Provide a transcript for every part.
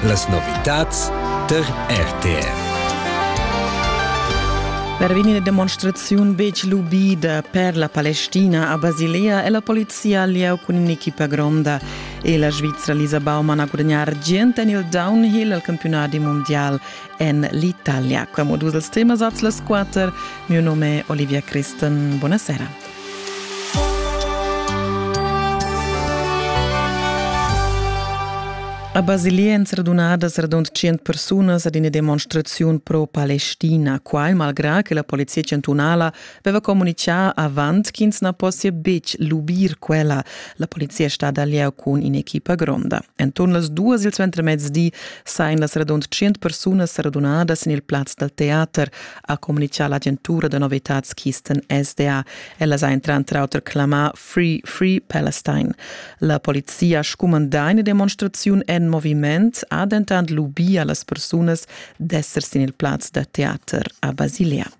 Las novitads tar RTR. Per vegnir demonstraziun betg lubida per la Palestina a Basilea è la polizia lieu cun un'equipa gronda e la Svizra Lisa Baumann ha gudagnà argient en il downhill al campionat mondial en l'Italia. Qua modus els temas als las quatter. Mio nome è Olivia Christen. Buonasera. A Basilea èn radunadas radund tschient persunas ad ina demonstraziun pro-palestina. Quai malgrà che la polizia chantunala aveva communitgà avant ch'ins na possia betg lubir quella. La polizia è stada al lieu cun in'equipa gronda. Enturn las duas il suentermezdi sajan las radund tschient persunas radunadas en il plaz dal teater. ha communitgà l'agentura da novitads Keystone SDA. Ella ha entrar auter clamà Free Free Palestine. La polizia ha scumandà ina demonstraziun en moviment, ha dentant lubì a las persunas d'esser sin il plaz da teater a Basilea.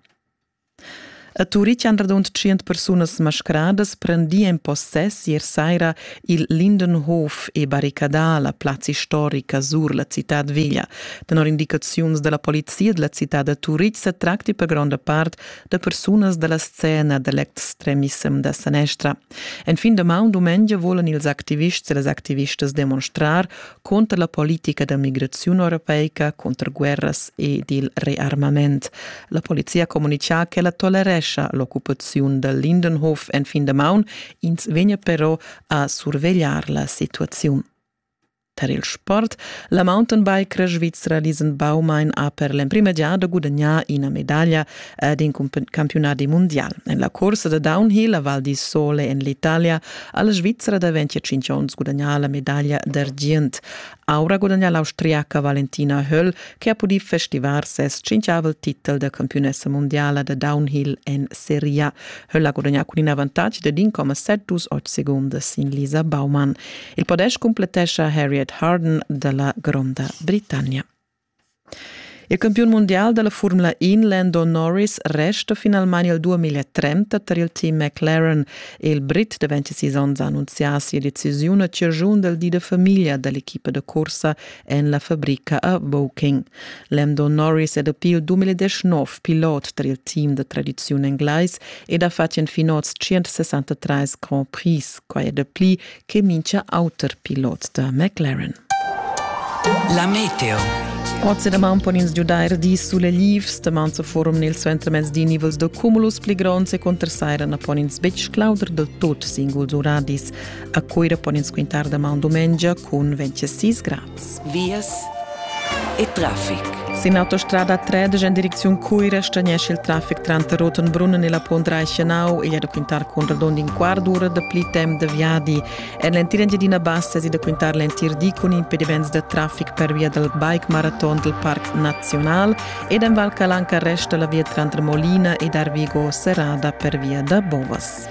A Turitg han radund 100 persunas mascradas prendì en possess ier saira Il Lindenhof e barricadà la plazza istorica sur la citad veglia. Tenor indicaziuns della polizia della città da Turitg se tracti per gronda part da persunas della scena dell'extremissem da sanestra. En fin de maun dumengia volan ils activists e les activistas demonstrar conter la politica da migrazione europeica, conter guerras ed il rearmament. La polizia comunica che la tolerescia l'occupazione del Lindenhof en fin de maun Ins vegnia però a survegliar la situaziun. Tar il sport, la mountainbike svizra Riesenbaumein ha per l'emprima giada gudagnà ina medaglia ed in campiunadi mondial. En la cursa da downhill a Val di Sole en l'Italia ha la Svizzera da 25 onns gudagnà la medaglia d'argient. Aura gudagnà l'Austriaca Valentina Höll che ha pudì festivar ses tschintgavel titel da campiunessa mundiala da downhill en Serie A. Höll ha gudagnà cun in avantatg da 1,72 segundas sin Lisa Baumann. Il podest cumplettescha Harriet Harden da la Gronda Britannia. Il campiun mundial dalla Formula un Lando Norris resta finalmein il 2030 tar il team McLaren. Il Brit da 26 onns ha annunzià sia decisiun a ciaschun dal di da famiglia dall'equipa da cursa en la fabrica a Woking. Lando Norris è dapi il 2019 pilot tar il team da tradiziun englais ed ha fatg fin oz 163 Grand Prix. Quai è dapli che mincha auter pilot da McLaren. La meteo. Oz daman pon ins giudair dis sulelivs, daman sa forum nel suentermezz di nivels da cumulus pli gronds e contrasaira na pon ins betg clauder del tot singuls uradis. A Coira pon ins quintar daman dumengia cun 26 grad. vias e traffic. Sin autostrada 3 en direcziun Cuira stagnesce il traffic tranter Rotenbrunnen e la Pont Reichenau. Igl è da quintar con radund in quart d'ora da pli temp da viadi. En l'entir Engiadina Bassa è da quintar l'entir di con impediments da traffic per via dal bike marathon del Parc Nazional ed en Val Calanca resta la via tranter Molina ed Arvigo serrada per via da Bovas.